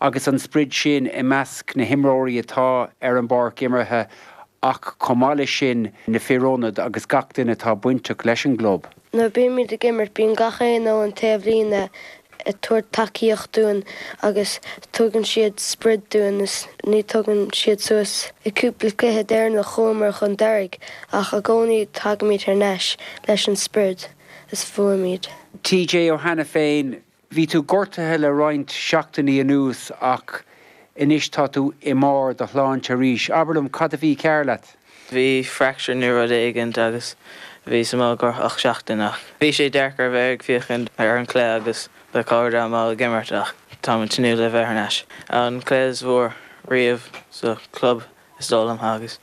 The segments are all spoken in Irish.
Agus an sprid sin i measc na himreoirí atá ar an bpáirc imeartha ach chomh maith leis sin na fir ionad agus gach duine atá bainteach leis an gclub. Nuair a bímíd ag imirt bíonn gach aoinne ar an taobhlíne ag tabhairt tacaíocht dúinn agus tugann siad sprid dúinn is ní tugann siad suas. An cúpla cluiche deireanach chuamar chun deiridh ach i gcónaí tagaimid thar n-ais leis an sprid is buaimíd. TJ Ó hAiniféin, Bhí tú gortaithe le roinnt seachtainí anuas ach anois tá tú i mbarr do shláinte arís. Abair liom, cad a bhí cearr leat? Bhí fracture nó rud éigint agam is bhíos amach i gcomhair seachtain ach bhí sé deacair a bheith ag féachaint ar an gcluiche agus mo chairde amuigh ag imirt ach táim ag tnúth le bheith ar ais. An cluiche is mó riamh sa chlub is dóigh liom, agus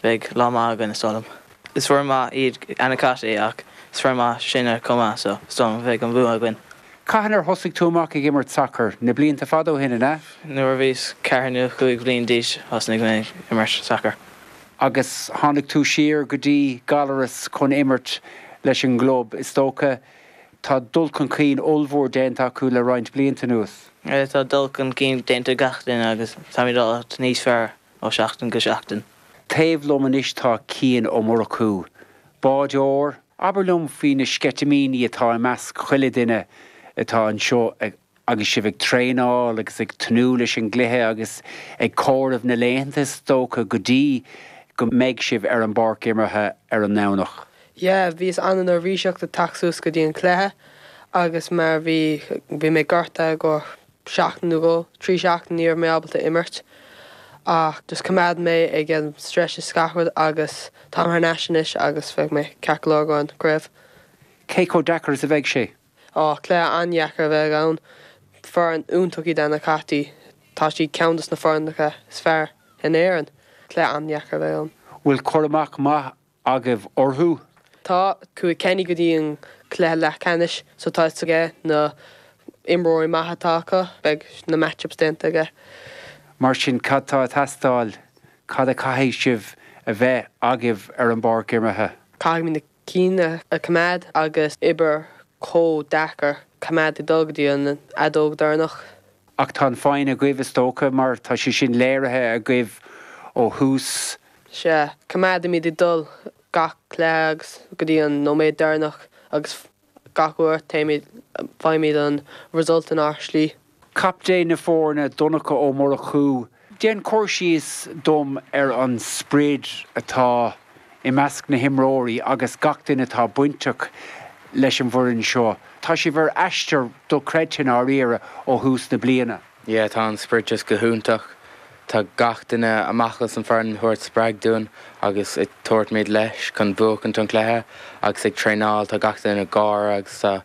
beidh lá maith againn, is dóigh liom. Is foireann mhaith iad Annacotty ach is foireann mhaith sinne chomh maith so is dóigh liom beidh an bua againn. Cathain ar thosaigh tú amach ag imirt sacair? Na blianta fada ó shin, an ea? Nuair a bhíos ceathair nó cúig bhliain d'aois thosnaigh mé ag imirt sacair. Agus tháinig tú siar go dtí Gallaras chun imirt leis an gclub, is dócha. Tá dul chun cinn ollmhór déanta acu le roinnt blianta anuas. Sea, tá dul chun cinn déanta ag gach duine agus táimíd i bhfad níos fearr ó sheachtain go seachtain. Taobh liom anois tá Cian Ó Murchú, báireoir. Abair liom faoi na sceitimíní atá i measc chuile duine atá anseo agus sibh ag traenáil agus ag tnúth leis an gcluiche agus ag comhaireamh na laethanta is dócha go dtí go mbeidh sibh ar an bpáirc imeartha ar an nDomhnach. Yeah, bhíos ana-neirbhíseach ag teacht suas go dtí an cluiche agus mar bhí, bhí mé gortaithe i gcomhair seachtain nó dhó, trí seachtain ní raibh mé ábalta imirt ach just choimeád mé ag an stretch is gach rud agus táim thar n-ais anois agus beidh mé ceart go leor don gcraobh. Cé chomh deacair is a bheidh sé? Oh, cluiche an-dheacair a bheidh ann. Foireann iontach iad Annacotty, tá siad ceann dos na foirneacha is fearr in Éireann. Cluiche an-dheacair a bheidh ann. Bhfuil cur amach maith agaibh orthu? Tá. Chuaigh Kenny go dtí an cluiche leathcheannais so tá 'fhios aige na imreoirí maithe atá acu. Beidh na match-ups déanta aige. Mar sin cad tá ag teastáil? Cad a chaithfidh sibh a bheith agaibh ar an bpáirc imeartha? Caithfimid na cinn a coimeád agus oibir chomh deacair coimeád ag dul go dtí an fheadóg deireanach. Ach tá an foighne agaibh is dócha mar tá sé sin léirithe agaibh ó thús Sea, coimeádaimíd ag dul gach cluiche agus go dtí an nóiméad deireannach agus gach uair téimíd, faighimíd an result in ár slí. Captaen na foirne, Donncha Ó Murchú, déan cur síos dom ar an sprid atá i measc na himreoirí agus gach duine atá bainteach leis an bhfoireann seo. Tá sibh ar aistear do-chreidte, ndáiríre, ó thús na bliana. Yeah tá an sprid just go hiontach. Tá gach duine amach as an foireann ag tabhairt spreag dúinn agus ag tabhairt míd leis chun bhuachaint an cluiche agus ag traenáil tá gach duine ag gáire agus tá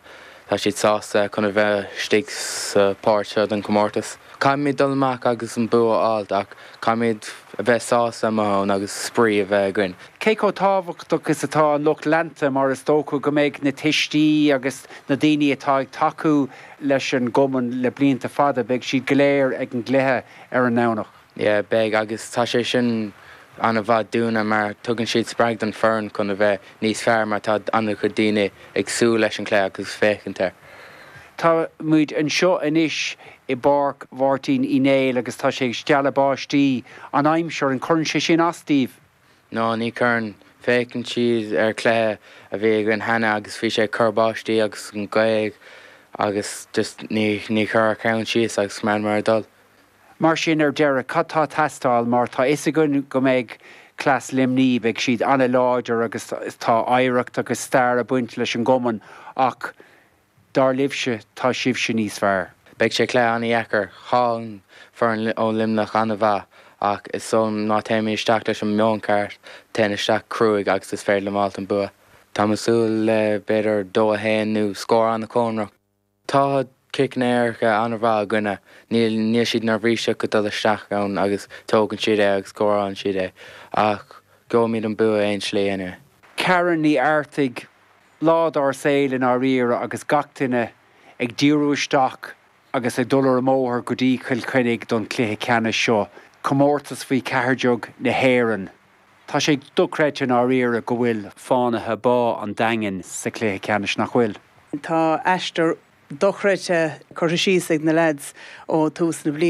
tá siad sásta chun a bheith istigh sa páirt seo den comórtas. Caithfimíd dul amach agus an bua a fháilt ach caithfimíd a bheith sásta i mo thóin agus spraoi a bheith againn. Cé chomh tábhachtach is atá an lucht leanta mar is dócha go mbeidh na tuistí agus na daoine atá ag tacú leis an gCumann le blianta fada. Beidh siad go léir ag an gcluiche ar an nDomhnach. Yeah, beidh agus tá sé sin an-mhaith dúinne mar tugann siad spreagadh don foireann chun a bheith níos fearr mar tá an-chuid daoine ag súil leis an chluiche agus féachaint air. Táimid anseo anois i bPáirc Mháirtín Uí Néill agus tá sé ag stealladh báistí. An aimsir, an cuireann sé sin as daoibh? Nó ní chuireann. Féachann siad ar cluiche a bhí againn cheana agus bhí sé ag cur báistí agus an ghaoth agus just ní, ní chuir a cheann síos agus choimeádamar ag dul. Mar sin ar deireadh cad tá ag teastáil mar tá fhios againn go mbeidh cleas Luimnigh, beidh siad an-láidir agus tá oidhreacht agus stair ag baint leis an gcumann ach, Dar libhse tá sibhse níos fearr. Beidh sé cluiche an-dheacair. Tá an foireann ó Luimneach an-mhaith ach is so má téimid isteach leis an meon ceart, téann isteach cruaigh agus is féidir linn fáilt an bua. Táim ag súil le b'fhéidir dó a haon nó scór an-chóngarach. Tá ciceanna éirice an-mhaith againne. Níl níl siad neirbhíseach ag dul isteach ann agus tógann siad é agus scórálann siad é. Ach gheobhaimid an bua aon slí anyway. Karen Ní Artaigh. Lá dár saoil i ndáiríre agus gach duine ag díriú isteach agus ag dul ar an mbóthar go dtí Chill Chainnigh don chluiche ceannais seo, comórtas faoi cheathair déag na hÉireann. Tá sé dochreidte i ndáiríre go bhfuil Fánaithe Bá an Daingin sa chluiche ceannais, nach bhfuil? Tá aistear dochreidte curtha síos ag na leaids ó tús na bliana.